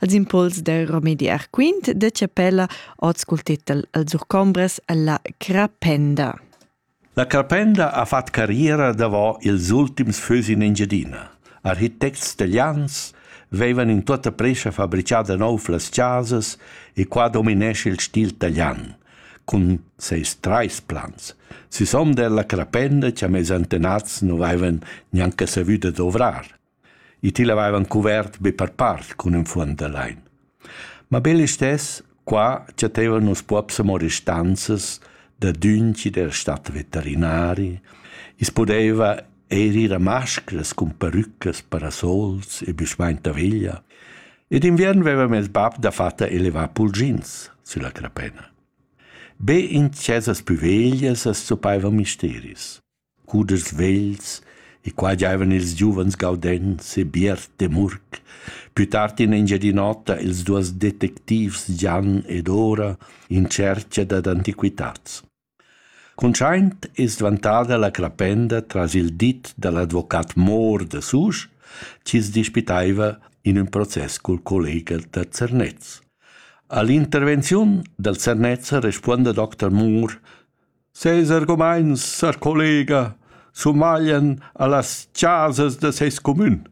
als impuls del Romedi Arquint de Chapella ot cul titel Els urcombres alla Crapenda. La Carpenda ha fat carriera davò ils ultims fös in Engiadina. Architects italians vevan in tota prescha fabricada nov las casas e qua dominesce il stil italian, cun seis trais plans. Sis hom della Crapenda, che a mezantenats non avevan neanche savuto dovrar. I til avevan cuvert be per part cun ün fuond da lain. Ma be listess qua chattevan nus pops amo restanzas da dünki del stat veterinari. I's pudeva eir ir a mascras cun perüclas, parasols e büschmaint da veglia. E d'inviern vevam il bab dafatta elevà pulgins sülla crapena. Be in chesas pü veglias as zuppaiva misteris. cudischs vegls e quai giaivan ils giuvens Gaudenz e Biert Demurg. Pü tard in Engiadin'Ota ils duos detectivs Gian ed Ora in tschercha dad antiquitats. Cuntschaint es dvantada la crapenda tras il dit da l'advocat Mohr da Susch chi's dispitaiva in ün process cul collega da Zernez. A l'intervenziun dal Zernez respuonda Dr. Mohr Ses argumaints sar collega sumaglian a las chasas da seis cumün.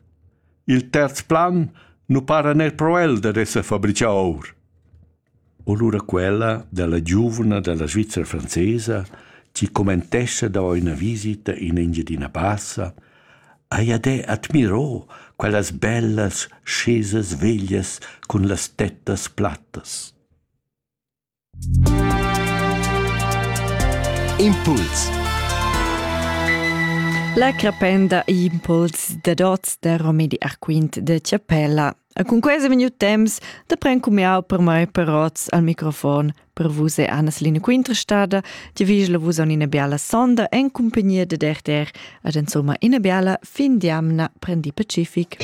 Il terz plan nu para neir pro el dad esser fabrichà our. O lura quella della giuvna della Svizzera francesa chi commentescha da üna visita in Engiadina Bassa, haja de admirò quellas bellas chesas veglias cun las tettas plattas. Impuls. La crependa Impuls de Dots de Romedi Arquint de Chiapella. A cun quasi minut temps da pren cumiau per mai per rots al microfon per vus e Anna-Seline Quinterstada, ti vigla vus on ina biala sonda en compagnia de Derter ad insomma ina biala fin di amna prendi pacific.